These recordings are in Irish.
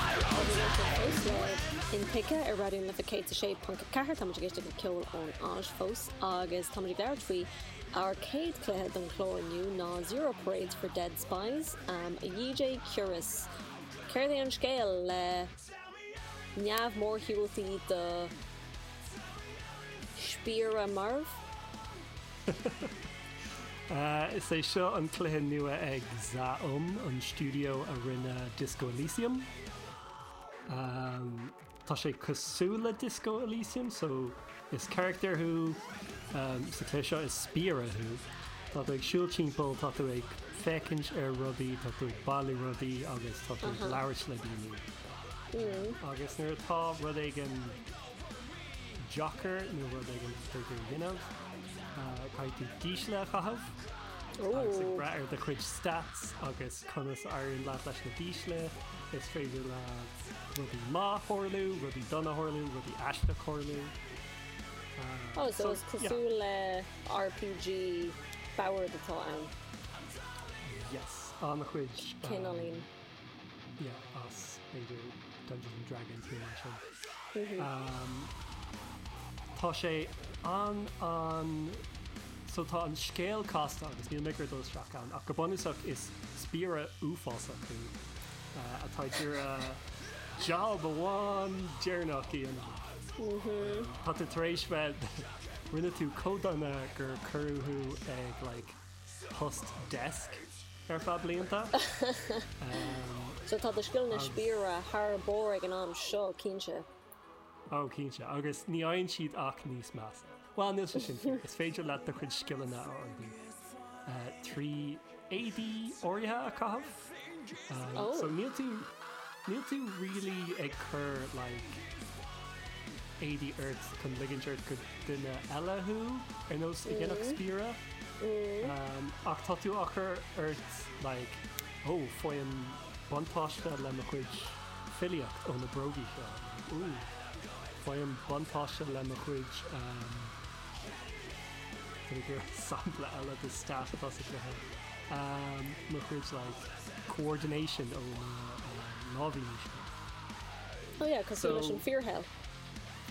Athsheolta ó Slán intuigthe ar Raidió na Life 106.4, táimid ag éisteacht le ceol ón Áis fós agus táimid ag labhairt faoi ár céad cluiche don chlár inniu ná Zero Parades for Dead Spies. A DJ Curious, céard é an scéal le neamh-mhórshiúltaí do spiaire marbh? Is é seo an cluiche nua ag Zaum, an stiúideo a rinne Disco Elysium. Tá sé cosúil le Disco Elysium, so is carachtar thú sa chluiche seo, is spiaire thú. Tá tú ag siúl timpeall, tá tú ag féachaint ar rudaí, tá tú ag bailiú rudaí agus tá tú ag labhairt le daoine. Agus nuair atá rud éigin deacair nó rud éigin is féidir a dhéanamh caithfidh tú dísle a chaitheamh agus ag brath ar do chuid stats agus conas a éiríonn leat leis na dísle is féidir le rudaí maith a tharlú, rudaí dona a tharlú, rudaí aisteach a tharlú. Oh so is cosúil le RPG boird atá ann? Yes, an-chuid. Cineáilín. yeah as b'fhéidir Dungeons and Dragons nó mar sin tá sé an an so tá an scéal casta agus níl mé ag iarraidh dul isteach ann ach go bunúsach is spiaire uafásach thú atá ag iarraidh jab amháin deireanach a dhéanamh tá tú tar éis bheith rinne tú chomh dona gur cuireadh thú ag like post desk ar feadh blianta. So tá do scileanna spiaire thar barr ag an am seo, cinnte. Ó, cinnte, agus ní fhaigheann siad ach níos measa. Bhuel, níl sé sin fíor, is féidir leat do chuid scileanna a fhorbairt trí éadaí áirithe a chaitheamh. so níl tú níl tú really ag cur like éadaí ort chun ligint ort go duine eile thú ar nós a dhéanfadh spiaire ach tá tú á chur ort like ó faighim buntáiste le mo chuid filíocht ó na brógaí seo, ooh faighim buntáiste le mo chuid Cad é gur sampla eile de stat tosaithe mo chuid like coordination ó na láimhíní seo? Oh yeah, cosúil leis an fíorshaol.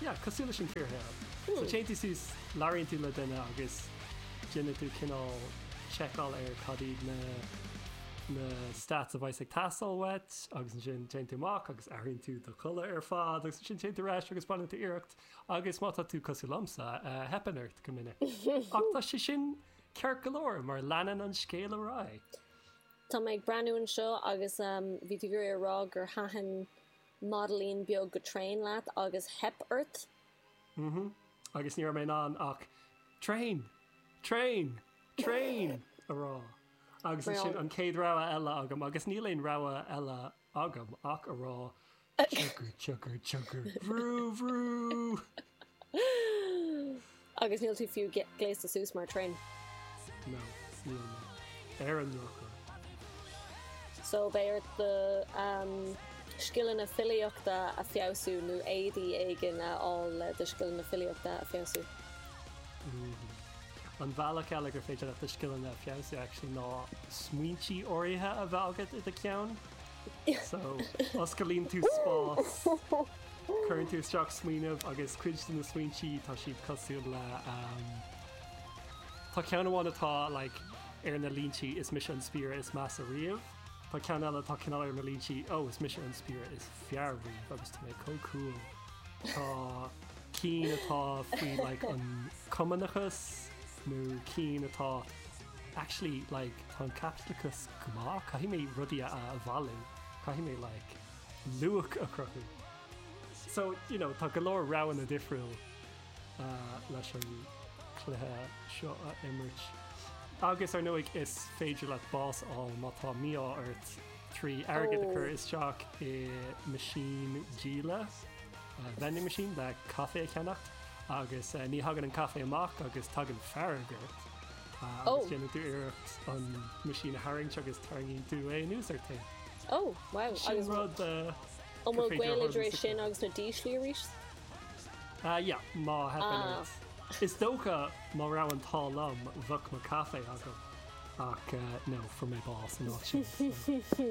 Yeah, cosúil leis an fíorshaol. So téann tú suas, labhraíonn tú le duine agus déanann tú cineál seiceáil ar cad iad na na stats a bheidh's ag teastáil uait agus ansin téann tú amach agus athraíonn tú do chulaith ar fad agus ansin téann tú ar ais agus baineann tú iarracht Agus má tá tú cosúil liomsa, teipeann ort go minic. Ach tá sé sin ceart go leor mar leanann an scéal ar aghaidh. Tá mé ag breathnú anseo agus bhí tú ag iarraidh a rá gur thaitin madraín beag go tréan leat agus theip ort. Hm, agus ní raibh mé in ann ach traein! traein! traein! a rá. Agus ansin an chéad rogha eile agam, agus níl aon rogha eile agam ach a rá Tsiocadh, tsiocadh, tsiocadh, bhrú, bhrú! Agus níl tú fiú gléasta suas mar thraein. No, níl mé. Ar an ndrochuair. So beidh ort do scileanna filíochta a fheabhsú nó éadaí éigin a fháil le do scileanna filíochta a fheabhsú. An bealach eile gur féidir leat do scileanna a fheabhsú actually ná smaointí áirithe a bheith agat i do cheann. So, oscailíonn tú spás, cuireann tú isteach smaoineamh agus cuid de na smaointí tá siad cosúil le um, Tá ceann amháin atá like, ar na línti is mise an spiaire is measa riamh. Tá ceann eile tá cineál ar na línti ó oh, is mise an spiaire is fearr riamh agus tá mé chomh cool. Tá cinn atá faoi like, an cumannachas nó cinn atá actually like tá an Caipitleachas go maith, caithfidh mé rudaí a a bhailiú, caithfidh mé like luach a chruthú. So, you know, tá go leor roghanna difriúil leis an chluiche seo a imirt. Agus ar ndóigh is féidir leat bás a fháil má tá mí-ádh ort trí airgead a chur isteach i meaisín díola. vending machine, le caife a cheannach agus ní thagann an caife amach agus tagann fear ag iarracht a agus déanann tú iarracht an meaisín a tharraingt agus tarraingíonn tú é anuas ort féin. Ó, wow. Sin rud a An bhfuil sé ag éirí as sin agus na díslí arís? Ia, má theipeann ort. Is dócha má raibh an t-ádh liom bheadh mo caife agam ach no, fuair mé bás an áit sin so.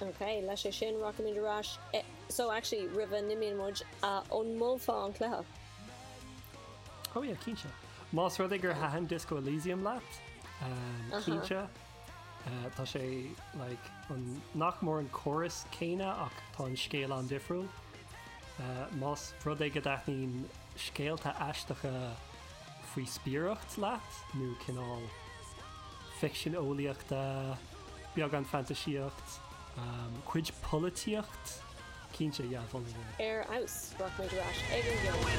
Ok, leis é sin rachaimid ar ais eh. So actually roimh a n-imíonn muid an molfá an cluiche. Oh yeah, cinnte. Más rud é gur thaitin Disco Elysium leat, umm, cinnte. Eh, tá sé, like, an, nach mór an córas céanna ach tá an scéal an-difriúil. Eh, más rud é go dtaitníonn scéalta aisteacha, faoi spiaireacht leat nó cineál ficsean eolaíochta, beagán fantaisíocht, cuid polaitíocht, cinnte, déanfainn é a mholadh. Ar fheabhas! Rachaimid ar ais chuig an gceol!